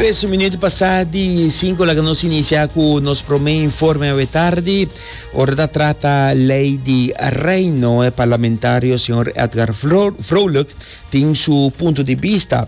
Tres minuut pasá di cinco laga nos inicia cu nos prome informe awe tardi. Ora ta trata ley di reino, e parlamentario señor Edgar Vrolijk tin su punto di vista.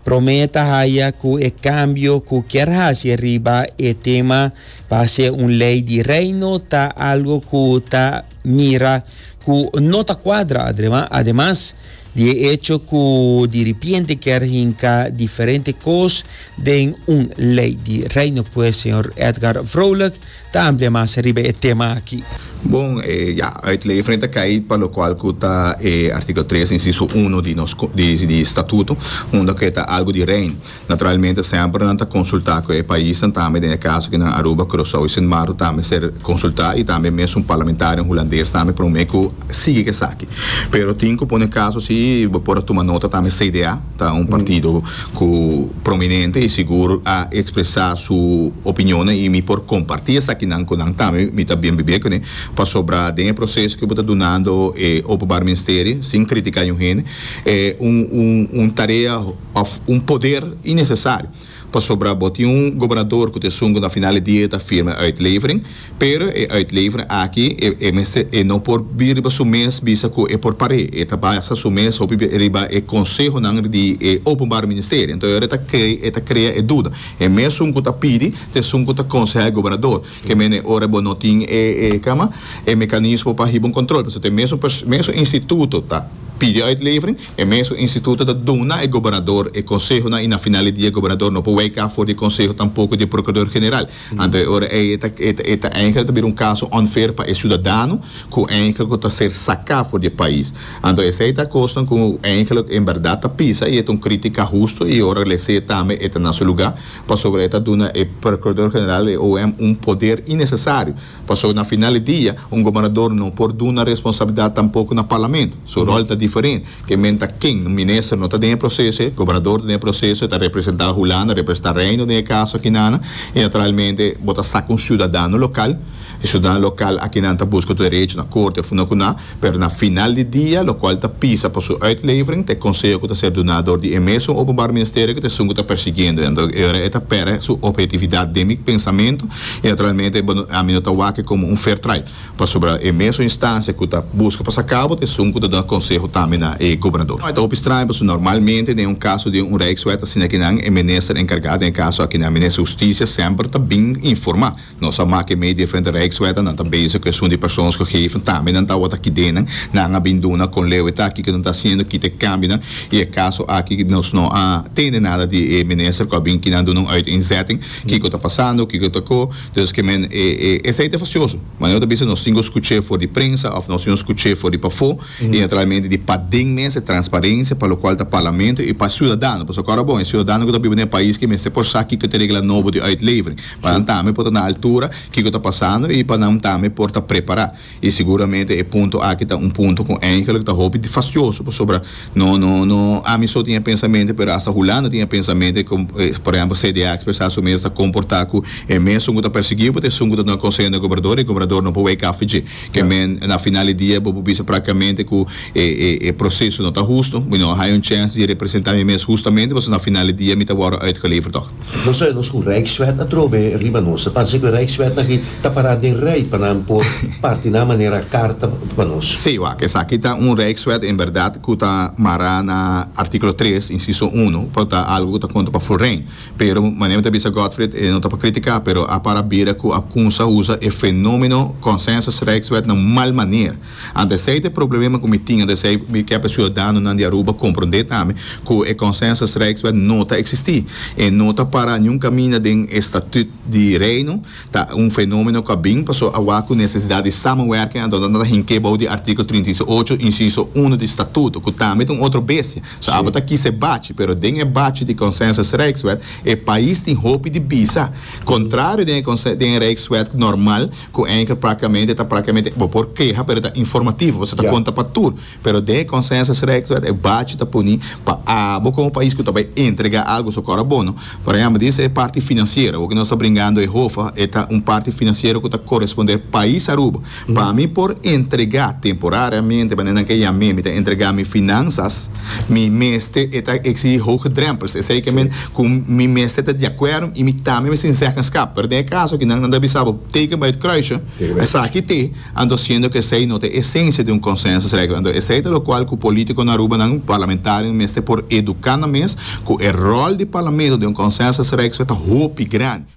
Prome ta haya cu e cambio cu kier haci riba e tema pa hacer un ley di reino ta algo cu ta mira cu no ta cuadra. Ademas. Di e echo cu diripiente kier hinca diferente cos den un ley di Reino pues señor Edgar Vrolijk ta amplia mas riba e tema aki. Bon, e, ya, uit ley frente cay pa locual cu ta e articulo tres, inciso uno di nos, di, di Statuto, unda cu e ta algo di Reino. Naturalmente semper nan ta consulta cu e paisnan tambe, den e caso aki nan Aruba, Curacao y Sint Maarten ta mester consulta y tambe mes un parlamentario en Hulandes tambe prome cu sigui cu esaki. Pero tin cu pone caso si bo por a tuma nota tambe CDA ta un partido cu prominente y sigur a expresa su opinionnan y mi por comparti esakinan cu nan tambe mi ta bien bibia cune pasobra den e proceso cu bo ta dunando e Openbaar Ministerie sin critica niun hende e un tarea òf un poder innesesario, pasobra bo tin un gobernador ku ta esun ku na final di dia ta firma e uitlevering, pero e uitlevering aki e e mester e no por bira riba su mes bisa ku e por par'é, e ta basa su mes hopi bira riba e konsehonan di e Openbare Ministerie. Anto e ta krei e ta krea e duda, e mesun ku ta pidi ta esun ku ta konsehá e gobernador, ke men e ora bo no tin e e kama e mekanismo pa hiba un kontrol, pasobra te mesun pers mesun instituto ta pidi uitlevering. E mesun instituto ta duna e gobernador e consehonan y na final di dia e gobernador no por weka for di e conseho tampoco di e procurador general. Anto e ora ey e ta e ta eindelijk ta bira un caso unfair pa e ciudadano cu eindelijk cu ta ser saca for di e pais. Anto esey ta cosnan cu eindelijk en berdad ta pisa y e ta un critica husto y ora lese tambe e ta na su lugar pasobra e ta duna e procurador general y OM un poder innecesario. Pasobra na final di dia, un gobernador no por duna responsabilidat tampoko na parlament. Su ròl ta diferent. Ke men ta ken? Un minister no ta den e proseso, e gobernador ta den e proseso, e ta representá Hulanda, representá Reino den e kaso akinana. I naturalmente bo ta saka un siudadano lokal. E siudadano lokal akinan ta buska derecho na korte, funda kuná. Pero na final di dia, lokual ta pisa pa su uitlevering, ta e konseho ku ta ser duná dor di e mesun Openbaar Ministerio ku ta esun ku ta persigiendo nan. Dor e ora e ta pèrdè su ophetividat den mi pensamentu i naturalmente e bo, ami no ta wak komo un fair trial pasobra e mesun instansia ku ta buska pa sa kabo ta esun ku ta duna konseho tambe na e gobernador. Ta hopi straño pasobra normalmente den un kaso di un Rijkswet asina kinan e minister enkargá den e kaso akinan, minister Hustisia, semper ta bin informá. Nos a mak'e mei diferente rijkswet en nan ta bezig cu esun di persons cu geven tambe nan tawata kiden'en. Nan a bin duna con leu e taki cu nan ta haciendo kita e cambionan y e caso aki nos no a tende nada di e minister cu a bin kinan duna un uiteenzetting kico ta pasando, kico ta cu. Dus ke men e esey ta facioso. Manera bo ta bisa nos tin cu scuche for di prensa of nos tin cu scuche for di pafo y naturalmente di paden mes e transparencia pa locual ta parlamento y pa ciudadano pasobra cu ora bon e ciudadano cu ta biba den e pais ke mester por sa kico ta e regla nobo di uitlevering. pa nan tambe por ta na altura kiko ta pasando i pa nan tambe por ta prepará. I seguramente e punto aki ta un punto ku Angel lo ta hopi fasioso pasobra no no no ami so tin e pensamente pero hasta Hulanda tin e pensamente ku por ehèmpel CDA a ekspresá su mes a ta komportá ku e mesun ku ta perseguiu bo ta esun ku ta duna konseho na e gobernador i e gobernador no por wei kaffi dje ke men na final di dia bo por bisa praktikamente ku e e e proseso no ta hustu mi no a haña un chèns di representá mi mes hustamente pasobra na final di dia mi ta wòrdu uitgeleverd tòg. Nos ta oe nos cu Rijkswet atrobe riba nos. Ta parse cu e Rijkswet aki ta para den rij pa nan por parti nan manera carta pa nos. Sí, wak, esaki ta un Rijkswet en berdad cu ta mara na articulo tres, inciso uno, por ta algo cu ta contra pa Fulrain. Pero, manera mi ta bisa Godfried, e no ta pa critica, pero a para bira cu a cunsa usa e fenomeno Consensus Rijkswet na un mal maner. Ante esei ta e problema ku mi tin, ante esei mi ke pa siudadanonan di Aruba komprondé tambe ku e Consensusrijkswet no ta eksistí. E no ta pará niun kaminda den e Statüt di Reino. Ta un fenómeno ku a bin pasó awa ku nesesidat di samenwerking anto nan ta hink'é bou di artíkulo trinta i ocho, insiso uno di Statuto, ku tambe ta un otro bestia. So abo ta kisa e bachi, pero den e bachi di Consensusrijkswet e pais tin hopi di bisa, kontrario den e den e rijkswet normal, Cu Anchor practicamente ta practicamente bo por keha pero ta informativo pasobra ta conta pa tur pero den e consensus rex wet e bachi ta puni pa abo como pais cu ta bay entrega algo su cor a bono por ejemplo di ese parti financiero awo cu nos ta bringando e hofa e ta un parti financiero cu ta coresponder pais Aruba pa mi por entrega temporariamente manera nan ke yam'e mi ta entrega mi finanzas. Mi mester e ta exigi hoge drempels, esei ke men ku mi mester ta di akuerdo i mi tambe mester tin zeggenskap. Pero den e kaso kinan nan ta bisa bo teken bai e kruisje, esaki te, anto siendo ku esei no ta e esensia di un konsènsusregla. Anto esei ta lokual ku polítikonan Arubanan, parlamentarionan mester por eduká nan mes ku e ròl di parlamento den un konsènsusregla ta hopi grandi.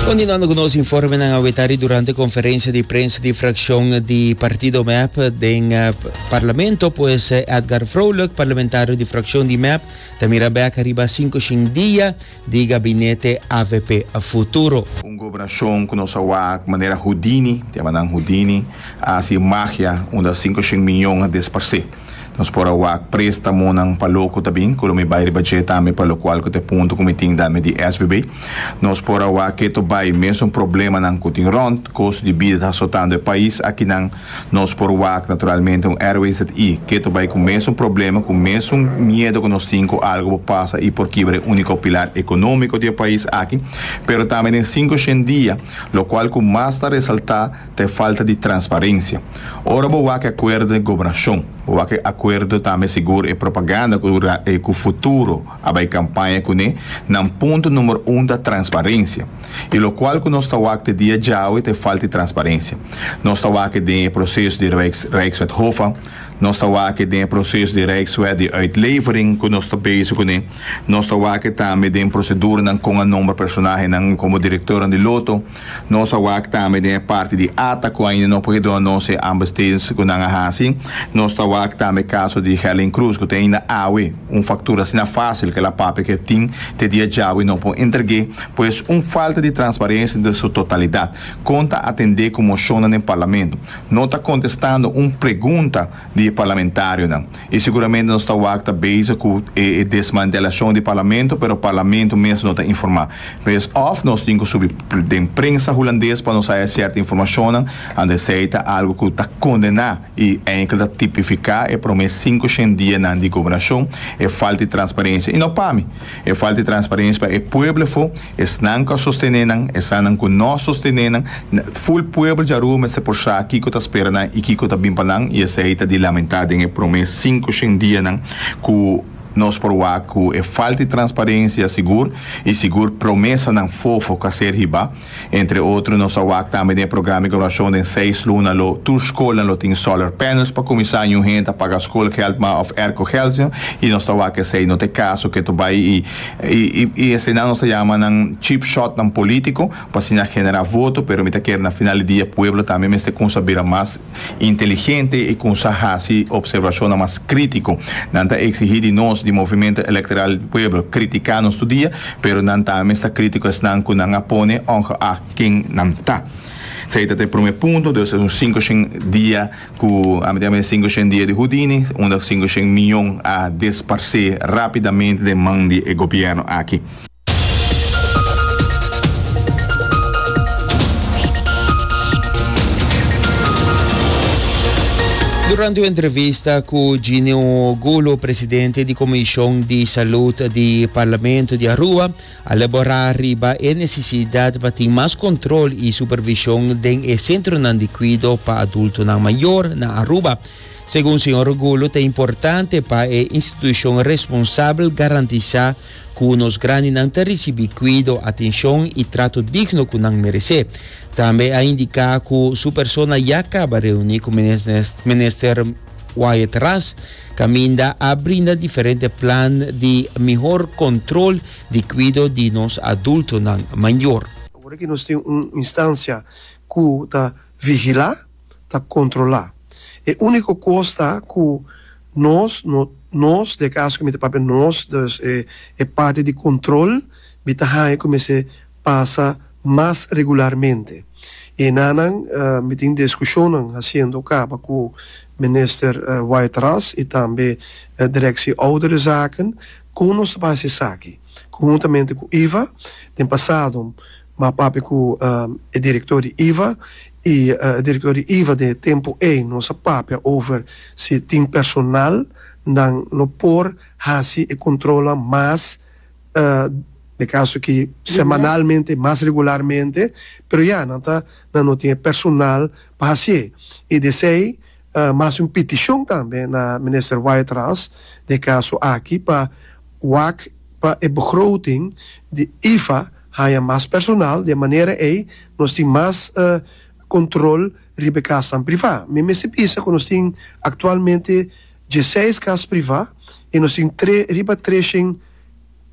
Continuando cu nos informenan aweta di durante conferencia di prensa di fraccion di partido MEP den eh, parlamento pues eh, Edgar Vrolijk, parlamentario di fraccion di MEP, ta mira bek arriba 5 shin dia di gabinete avp a futuro. Un goberashon ku nos a wak manera Houdini, te llama nan Houdini, a hasi magia unda sinku shen miyon a desparsé. Nos por a wak prestamonan pa lo ku ta bin, ku lo mi bai riba dje tambe pa lokual ku ta e punto ku mi tin da mi di SVB. Nos por a wak keto bai mesun problemanan ku tin rònt, kostu di bida ta asotando e pais, akinan. Nos por wak naturalmente un airway ZI. Keto bai ku mesun problema, ku mesun miedo ku nos tin ku algu por pasa i por kibra e úniko pilar ekonómiko di e pais aki, pero tambe den sinku shen dia, lokual ku mas ta resaltá ta e falta di transparensia. Ora bo wak e akuerdo den gobernashon, bo wak e akuerdo tambe sigur e propaganda ku ku Futuro a bai kampaña kuné, nan punto número un ta transparensia. i lokual ku nos ta wak te dia djawe te falta di transparensia. Nos ta wak e den e proseso di Rijkswet Hoffa, nos ta wak e den e proseso di Rijkswet di Uitlevering ku nos ta bezig kuné, nos ta wak e tambe den proseduranan kon a nombra personahenan komo direktornan di loto, nos a wak tambe den e parti di ata ku ainda no por ke dona nos e aanbestedings ku nan a hasi, nos ta wak tambe e kaso di Helen Cruz ku te ainda awe un faktura asina fásil ku el a papia ku e tin te dia djawe no por entreg'é. Pues un falta di transparencia den su totalidad. Con ta atende cu mocionnan den Parlamento? No ta contestando un pregunta di e parlamentarionan. Y seguramente nos ta wak ta bezig cu e e desmantelacion di Parlamento, pero Parlamento mes no ta informa. Pues of nos tin cu subi den prensa Hulandes pa nos haya cierta informacionnan, ande esey ta algo cu ta condena. i enkel ta tipifiká e promé sinku shen dianan di gobernashon, e falta di transparensia. I no pa mi, e falta di transparensia pa e pueblo afó, esnan ku a sostené nan, esanan ku no a sostené nan, ful pueblo djarua mester por sa kiko ta spera nan i kiko ta bin pa nan, i esei ta di lamentá den e promé sinku shen dianan ku nos por wak ku e falta di transparensia sigur, i sigur promesanan fofo ku a ser hibá. Entre otro nos a wak tambe den e programa evaluashon den seis luna lo tur skolnan lo tin solar panels pa kuminsá ñu hende ta paga skolgèld ma òf erkogeldsnjo i nos ta wak esei no ta e kaso ku e ta bai i eseinan nos ta yama nan cheap shotnan polítiko pa siña generá voto pero mi ta kere na final di dia pueblo tambe mester kuminsá bira mas inteligente i ku sa hasi opservashonnan mas krítiko. Nan ta eksihí di nos di Movimiento Electoral del Pueblo kritiká nos tur dia, pero nan ta mes ta krítiko esnan ku nan a pone ongeag ken nan ta. Esei ta ta e promé punto, dus es un sinku shen dia ku a mete awe sinku shen dia di Houdini, unda sinku shen miyon a desparsé rápidamente den man di e gobièrnu aki. Durante un entrevista cu Ginio Gulo, presidente di Comision di Salud di Parlamento di Aruba, a labora riba e necesidad pa tin mas control y supervision den e centronan di cuido pa adultonan mayor na Aruba. Segun señor Gulo ta importante pa e institucion responsabel garantisa ku nos grandinan ta risibí kuido, atenshon i trato digno ku nan meresé. Tambe a indiká ku su persona ya kaba reuní ku Minister Wyatt Ras, kaminda a brinda diferente plan di mihor kontrol di kuido di nos adultonan mayor. Ora ki nos tin un instansia ku ta. Vigilá ta kontrolá. E úniko kos ta ku nos, no nos, di e kaso ku mi ta papia nos, dus e e parti di kontrol mi ta haña ku mester pasa mas regularmente. I enanan mi tin diskushonnan hasiendo kaba ku Minister Whiteras i tambe Direksie Ouderenzaken kon nos ta basa esaki. Konhuntamente ku iva den pasado. M'a papia ku e direktor di iva i e direktor di iva di e tempu ei nos a papia over si tin personal nan lo por hasi e kontrolnan mas na e kaso aki semanalmente mas regularmente pero ya nan ta nan no tin e personal pa hasié i di esei A hasi un pitishon tambe na Minister Wytras den e kaso aki pa wak pa e begroting di IFA haña mas personal, di e manera ei nos tin mas kontrol riba e kasnan privá. Mi mester bisa ku nos tin aktualmente dieseis kas privá i nos tin tre riba treshent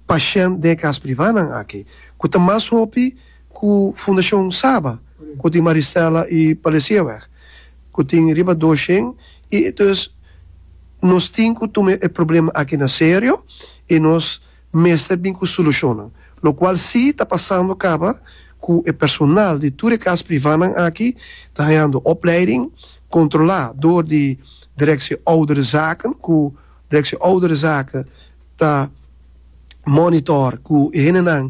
pashènt den e kas privánan aki ku ta mas hopi, Ku Fundashon Saba, ku tin Maristela i Palesieweg, ku tin riba dos shen, i entonces nos tin ku tuma e problema aki na serio i nos mester bin ku solushonnan. Lokual si ta pasando kaba ku e personal di tur e kas privánan aki ta hañando opleiding, kontrolá dor di Direksie Ouderenzaken, ku Direksie Ouderenzaken ta mònitor ku e hendenan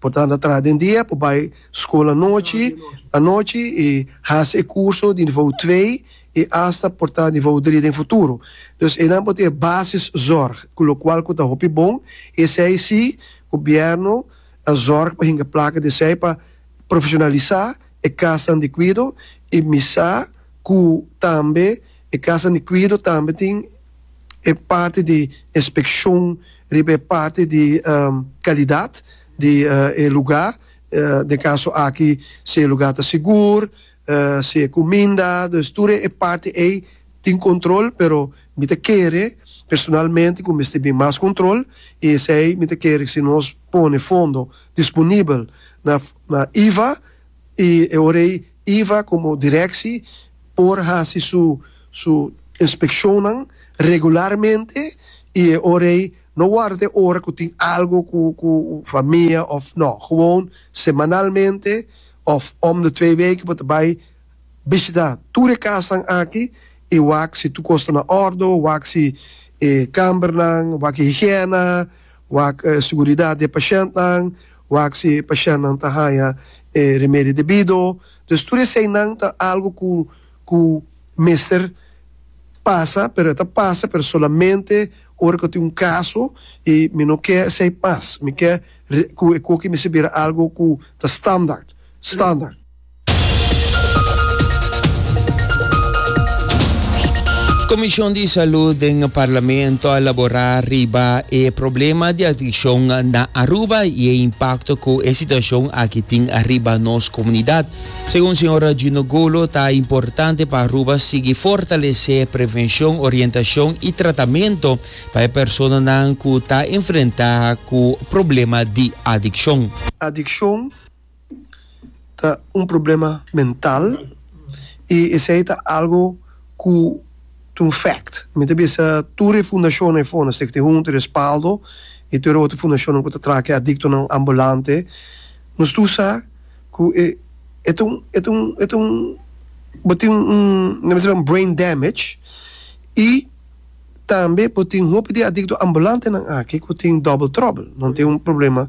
Por tanda traha den dia, por bai school anochi, anochi y haci e curso di nivo twee y hasta por ta nivo drie den futuro. Dus enan por ta e basis zorg cu locual cu ta hopi bon y esey si gobierno a zorg pa hinga placa di esey pa profesionalisa e casanan di cuido y misa cu tambe e casanan di cuido tambe tin e parti di inspekshon riba e parti di kalidat di e lugá, den kaso aki si e lugá ta sigur, si e kuminda, dus tur e parti ei tin kontrol, pero mi ta kere personalmente ku mester bin mas kontrol i esei mi ta kere si nos pone fondo disponibel na na iva i e ora ei. Iva komo direkshi por hasi su su inspekshonnan regularmente i e ora ei no wòrdu ta e ora ku tin algu ku ku famia òf nò. Gewoon semanalmente òf om di twee weken bo ta bai bishita tur e kasnan aki i wak si tur kos ta na òrdu, wak si e kambernan, wak e higièna, Wak e seguridat di e pashèntnan, wak si e pashèntnan ta haña e rimedi debido. Entonces tur eseinan ta algu ku ku mester pasa, pero e ta pasa, pero solamente ora ku tin un kaso, i mi no ke esei mas, mi ke ku e koki mester bira algu ku ta standaard, standaard. Comishon di Salud den Parlamento a labora riba e problema di adiccion na Aruba y e impacto cu e situacion aki tin riba nos comunidad. Segun Sra. Gino Golo ta importante pa Aruba sigui fortalece prevencion, orientacion y tratamento pa e personanan cu ta enfrenta cu problema di adiccion. Adiccion ta un problema mental y esey ta algo cu ta un fact. Mi ta bisa tur e fundacionnan e fondo Stichting Hunter, Respaldo y tur e otro fundacionnan cu ta traha cu e adictonan ambulante, nos tur sa cu e e ta un e ta un e ta un bo tin un un nan bisa nan brain damage y tambe bo tin hopi di e adicto ambulantenan aki cu tin double trouble, nan tin un problema.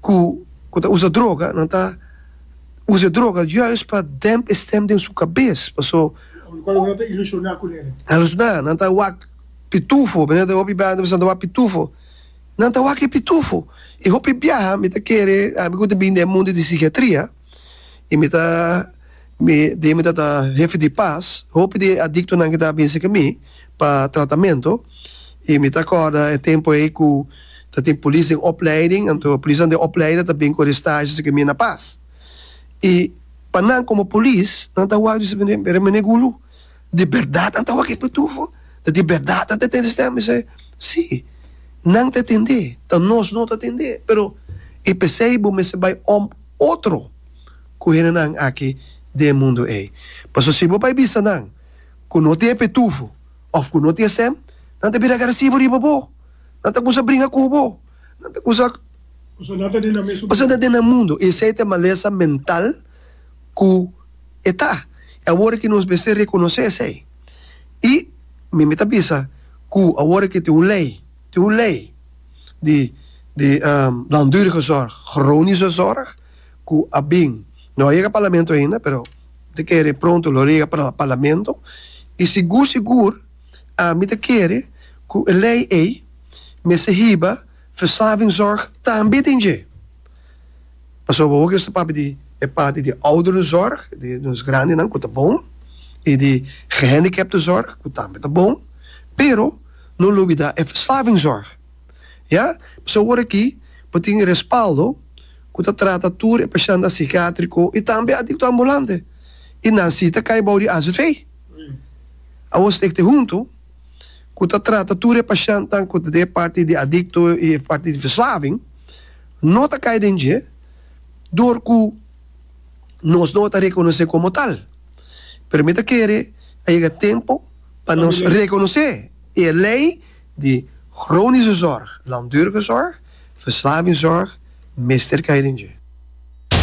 ku ku ta usa droga nan ta usa e droga juis pa demp e stem den su kabes paso Di cual nan ta ilusioná cu nene. Alusioná, nan ta wak pitufo, mi ta hopi biaha nan ta bisa nan ta wak pitufo, nan ta wak e pitufo y hopi biaha mi ta kere ami cu ta bini den e mundo di psiquiatria. y mi ta mi dije mi ta ta hefe di pas hopi di e adictonan ki ta binse ke mi pa tratamento y mi ta acorda e tempo ey cu ta tin polis den opleiding anto polisnan den opleiden ta bin cu e stage esaki mi na pas y pa nan como polis nan ta wak di su mene gulu. Di bèrdat nan ta wak e pitufo? Di bèrdat nan ta tende stèm i sey? Sí, nan ta tende, ta nos no ta tende. Pero i p'esei bo mester bai om otro ku hendenan aki den e mundu ei. Pasobra si bo bai bisa nan ku no tin e pitufo òf ku no tin e stèm, nan ta bira agresivo riba bo, nan ta kuminsa bringa ku bo, nan ta kuminsa. Pasobra nan ta den nan mundu. Pasobra nan ta den nan mundu i esei ta e malesa mental. ku e ta, i awor ki nos mester rekonosé esei. I mi mi ta bisa ku awor ki tin un lei, tin un lei di di langdurige zorg, chronische zorg, ku a bin, no a yega Parlamento ainda, pero mi ta kere pronto lo yega Parlamento, i sigur sigur mi ta kere ku e lei ei mester hiba verslavingszorg tambe den dje. Pasobra awor ke nos ta papia di e parti di ouderenzorg, di nos grandenan ku ta bon, i di gehandicaptenzorg ku tambe ta bon, pero no lo olbida e verslavingzorg. Ya pasobra awor aki bo tin respaldo ku ta trata tur e pashèntnan sikiátriko i tambe adikto ambulante i nan si ta kai bou di azv. Awor sta ekte huntu ku ta trata tur e pashèntnan ku ta den e parti di adikto i e parti di verslaving. no ta kai den dje dor ku nos no ta rekonosé komo tal. Pero mi ta kere a yega tempu pa nos rekonosé e lei di chronische zorg, langdurige zorg, verslavingszorg mester kai den dje.